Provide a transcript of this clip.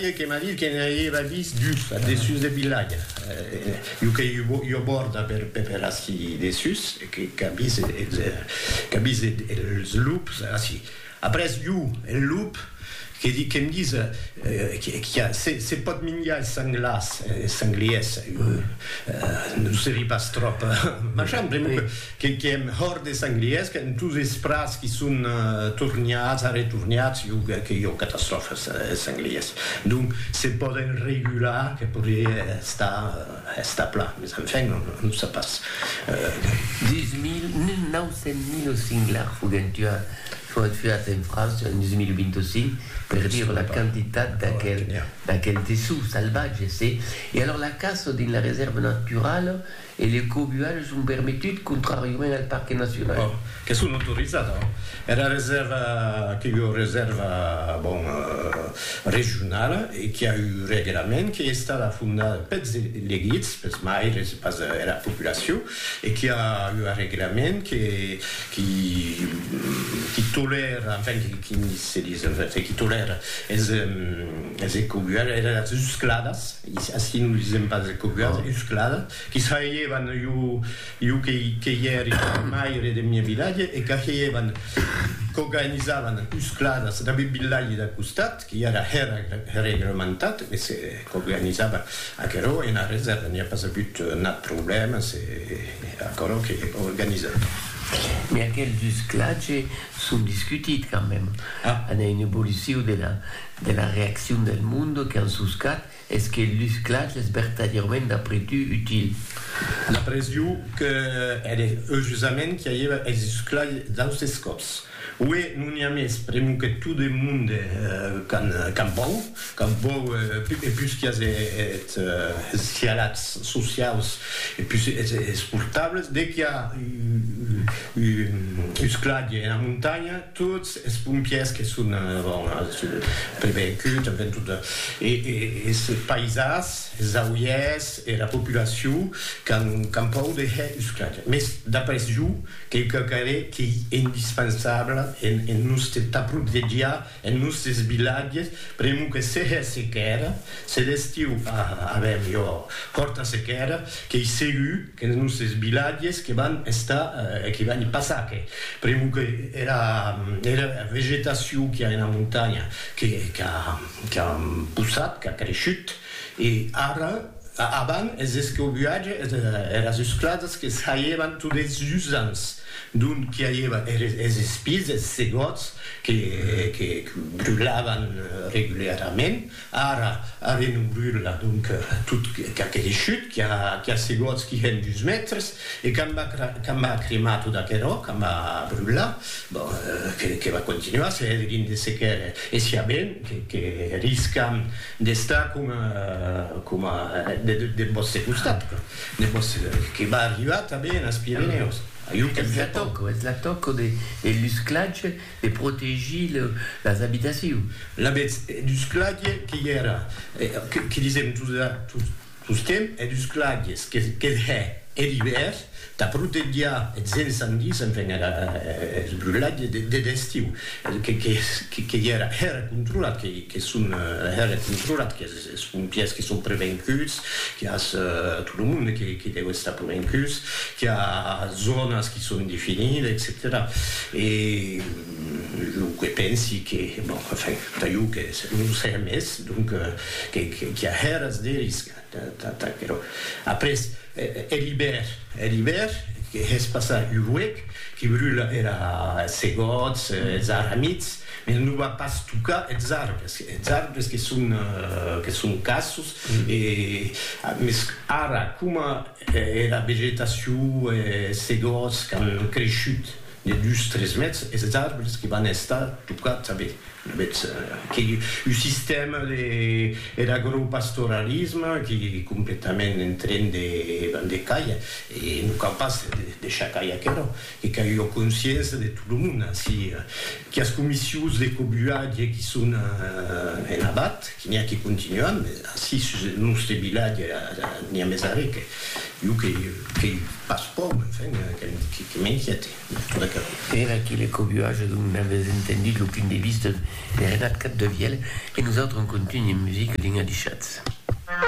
Eth que m'a dit que ne auieva vist dus ath dessús deth vilatge, jo qu'ei ua bòrda per ací dessús, e qu'a vist es lups ací. Après jo, eth lup, que dic que me dise que se pòt minjar es sanglars, es sangliers, non se ri pas tròp, machan, pr'amor que Que qu'èm hòrt de sanglièrs qu'en tous es prats qui son torniats, arretorniats, jo que que jo catastròfes es sanglièrs. Donc se pòden regular que podrie estar estar plan, mes enfin on on sap pas. Deus mil, mil nau cent mil singlars foguèn tuats, foguèt tuats en França en 2025, per dire la quantitat d'aquel d'aquel dessous salvatge, se. E alors la caça dins la resèrva naturala E le cobualh son permetut contràriament al parque nacional. Ò, que son autorizat, ò. Era resèrva que ua resèrva, bon, regionala e qui a un reglament qu'ei estada fondada peths elegits, peths maires e pas era populacion e qui a ua reglament que qui qui tolèra, enfin, qui qui se dis, enfin, qui tolèra es es ecobualhs, era uscladas. Ací nos lisèm pas de coguas uscladas qui s'ailhèvan iu que i ère maire deth mieu vilatge e qu'ailhèvan coganizavan uscladas dab eth vilatge d'a costat qui era regrementat e se coganizavan aquerò ena reserva n'i a pas avut nat problèma se aquerò que organizavan. Mès aquels usclatges son discutit quand mème, an a un evoluciu de la. de la reaccion del monde que an suscat es que lu sclatge es vertadièrament d'après tu util. D'après iu que ère eu jusament qui aieva es susclatge d'austes còps. Ué, non i a mes, premu que tot e monde qu'an vòu, qu'an vòu e pus qui as eth sialats sociaus e pus es portables, de qui a u sclatge ena montanha, Tots es pompièrs que son prevenguts, enven tot es paisans, es auièrs, era populacion qu'an pòur de hèr usclat. Mès d'après jo, quauque qu'ère qu'ei indispensable en nòste tà protegiar es nòstes vilatges, pr'amor que se hè sequèra, se d'estiu avèm ua hòrta sequèra, qu'ei segur, Qu'es nusses vilatges que van estar e que van passar que pr'amor que era era vegetacion qu'i a ena montanha que qu'a qu'a possat, qu'a creishut e ara avan es escobuatges es eras esclasas que saievan tot es usants d'ont qu'i aieva eres es espís, es segòts que que brulavan regularament Ara, ara non brula, donc, tot qu'aquele chut qui a segots qui hèn dus mètres, e quand m'a cremat tot aquerò, quand m'a brulat, bon, que va continuar, se hèt gin de sequer e siá ben, que riscam d'estar coma deth vòste costat, que va arribar tanben as Pirenèus. Es la tòca de lusclatge E protegir las abitacions. L'avètz dus claviers que i èra, que disèm tostemps, hè dus claviers, que hè er ivèr, tà protegiar eths incendis, enfin eths brulatges de d'estiu, que i èra, hè era controlat, que son hè era controlat, qu'es Es pompièrs que son prevenguts, qu'i a tot lo monde que deu estar prevenguts, qu'i a zònas que son definidas, etcetèra. E lo que pensi que, bon, enfin, tà jo que non serà mès, donc, qu'i a hèras de risc tà aquerò. Après, hè l'ibèr, hè l'ibèr, que hè's passar un huec, que brula era es segòts, es arramits, Mai non va pas tocar eths arbres, eths arbres que son que son cassos e mes ara coma era vegetacion e se gòts qu'an creishut de dus tres mètres eths arbres que van estar tocats a vei avètz que un sistèma de er agropastoralisme qui completament en tren de van de cair e non cau pas de deixar cair aquerò. Que qu'ai ua consciença de tot lo mond ací, quias comissius de cobuatge qui son en abat, que n'i a que continuan, mes ací sus eth nòste vilatge n'i a mes arrè que jo qu'ei pas pòur, enfin, que m'inquiète. Era aquí le cobuatge dont n'avètz entendut lo punt de vista de Renat Capdevièlh e nosautres en contunh en musica dins Adishatz.